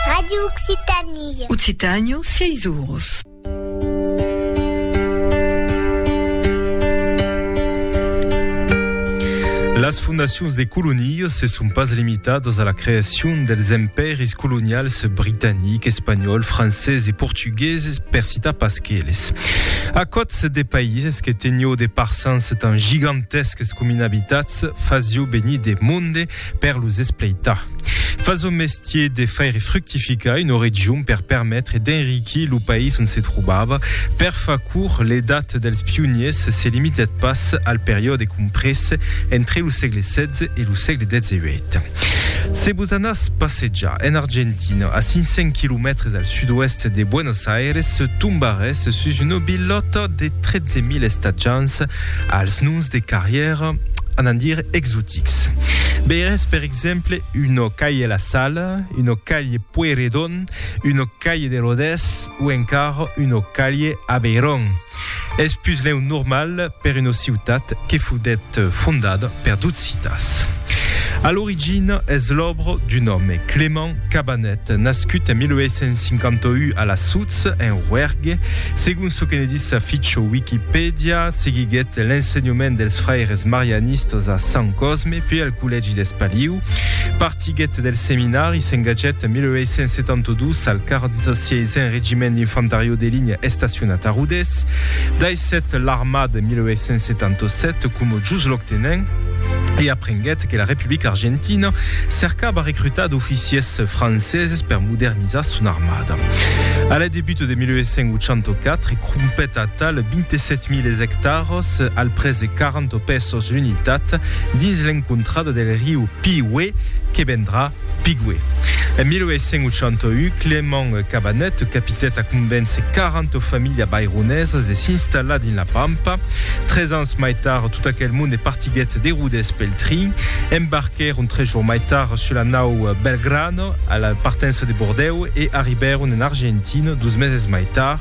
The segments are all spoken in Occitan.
Radio Occitanie. Occitània, sièis oros. Las fondacions de colonias se son pas limitadas a la creacion dels empèris colonials britanic, espanhòl, francés e portugueses, per citar pas qu'eles. A còts de païses que tenió de parsans tan gigantesques com inhabitats, fasió venir de monde per los espleitar. Fa son mestier de faire fructificar una region per permetre d'enriquir lo país on se trobava. Per fa court, l'edat dels pioniers se limitèt pas al periòde comprés entre lo sègle XVI e lo sègle XVIII. Se vos anàs passejar en Argentina, a 500 quilomètres al sud-oèst de Buenos Aires, tombarès sus una bilhòta de 13.000 estatjants als noms de carrièra, anant dire exotics. Veirètz per exemple una calhe la Sala, una calhe Pueyrredon, una calhe de Rodés o encara una calhe Abeiron. Es puslèu normal per una ciutat que foguèt fondada per d'occitans. A l'origina es l'òbra d'un òme, Clément, Cabanet, nascut en 1851 a la Soutz, en Roergue, segon çò que ne ditz sa ficha Wikipèdia, seguiguèt l'ensenhament dels fraires marianistas a Sant Cosme, puèi al collègi d'Espaliu. Partiguèt del seminari i s'engatgèt en 1872 al 46n Regiment d'Infantariò de Linha estacionat a Rodés. Daissèt l'armada en 1877 coma jusloc-tenent e aprenguèt que la Republica Argentina cercava recrutar d'oficiers franceses per modernizar son armada. A la debut de 1884, crompèt a tal 27.000 hectares al pres de 40 pesos l'unitat dins l'encontrada del riu Piue que vendrà Pigüé. En 1881, Clément Cabanèt capitèt a convéncer 40 familhas baironesas de s'installar dins la Pampa. Tres ans mai tard, tot aquel monde partiguèt de Rodés pel trin. Embarquèron tres jours mai tard sus la nau Belgrano a la partença de Bordèu e arribèron en Argentina dos meses mai tard.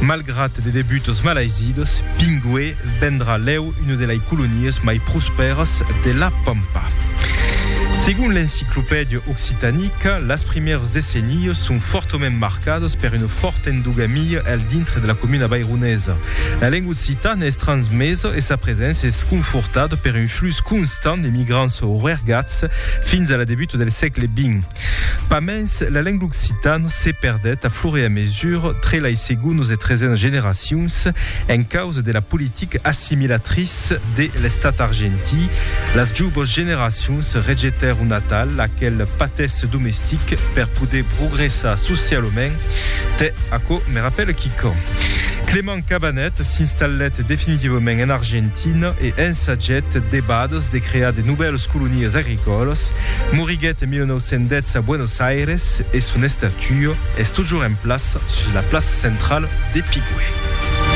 Malgrat de debutos malaisidos, Pigüé. Vendrà lèu una de lei colonias mai prospèras de la Pampa. Segon l'Enciclopèdia Occitanica, las primièrs decennias son fòrtament marcadas per una fòrta endogamia al dintre de la comuna vaironesa. La lenga occitana es transmesa e sa preséncia es confortada per un flux constant d'emigrants oergats fins a la debuta del sègle xx. Pas mens, la lenga occitana se perdèt a fur e a mesura tre lai segonas e tresenas generacions en causa de la politica assimilatriça de l'Estat argentí. Las jouvas generacions rejetèron atal aquel patèsse domestic per poder progressar socialament. Tè, aquò me rapèla quicòm. Cabanet s'installèt definitivament en Argentina e ensagèt debades de crear de novèles colonies agricòlas. Moriguèt en 1910 a Buenos Aires e son estatua es tojoremplaça sus la plaça centrala de Pigüé.